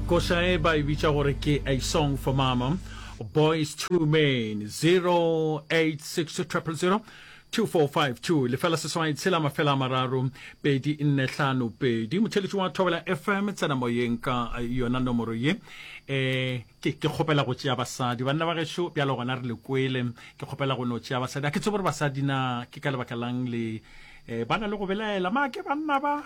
Koša e ba e bitša gore ke A Song for Mama, Boys to Men, 086000 2452 lefela seswai tshela mafela a mararo pedi nne hlano pedi motheletši wa thobela fm tsena moyeng ka yona nomoro ye um ke kgopela go tšea basadi banna ba gešo bjalo gona re le kwele ke kgopela go no tšea basadi a ke tse gore basadi na ke ka lebaka lang le um ba na le go belaela maake banna ba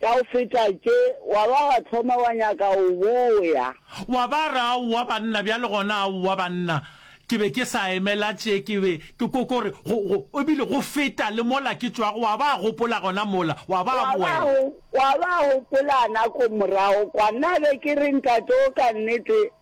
Ka go feta tše, wa ba wa thoma wa nyaka go boya. Wa ba re, Aowa, banna, bjale gona, aowa, banna. Ke be ke sa emela tše, ke be ke ko, ko re, go, go, e bile go feta le mola ke tšwago. Wa ba gopola gona mola, wa ba Wa ba boela. go, wa ba gopola nako morago kwa, nna be ke re, Ntate wo, ka nnete,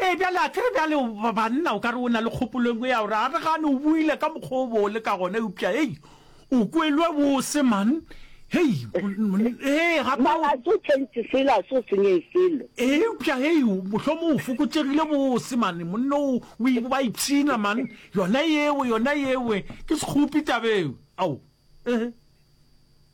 Ee, bjale a tsere bjale banna o ka re o na le kgopolo engwe ya gore a re gane o buile ka mokgwa o bole ka gona eupša hei o kwelwe bose man hei ee gape Mara so change sela so senye selo. ee eupša hei mohlomong o fokotšegile bose mane monna o o i- ba ipshina man yona yewe yona yewe ke sekgopi tabeo ao ehe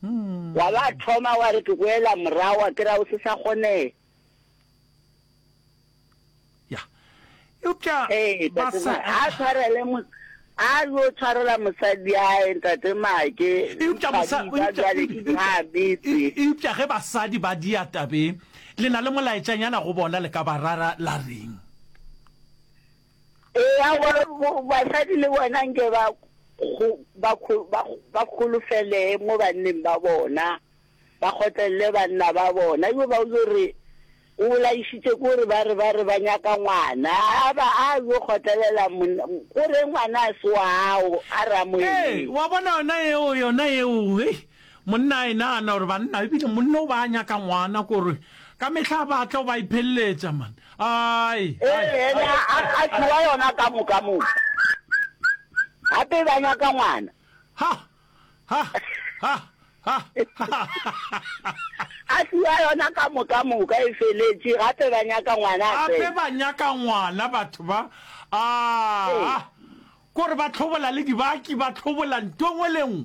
Hmm. Wa ba thoma wa re ke boela morago a kira o se sa kgonega. Ya. Eupša Ee, ba tate sa Ma, a tshwarele mo a yo tshwarela mosadi yae ntate Make. eupša mosa Thabisa eupša- jwale ke eupša- thabetse. e- eupša ge basadi ba dia tabeng le na le molaetšanyana go bona le ka ba rara la reng Eya gore basadi le bona nke ba ba kgolofelee mo banneng ba bona, ba kgotlelele banna ba bona. Yo ba yo re o bolaišitše ke gore ba re ba re ba nyaka ngwana, a ba a yo kgotlelela monna, o re ngwana a se wa gago, a re a mo emele. Ee, wa bona yona yeo, yona yeo, hei, Monna a e nagana gore banna ebile monna o ba a nyaka ngwana kore ka mehla a batla o ba ipheleletša man ai Ee, ene a, a, a tšhoa yona ka moka moka. Gape ba nyaka ngwana. ha ha ha ha A tšhoa yona ka moka moka e feletše gape ba nyaka ngwana a gape tsena. ba nyaka ngwana batho ba a Ee. kore ba tlhobola le dibaki ba tlhobola nto engwe le engwe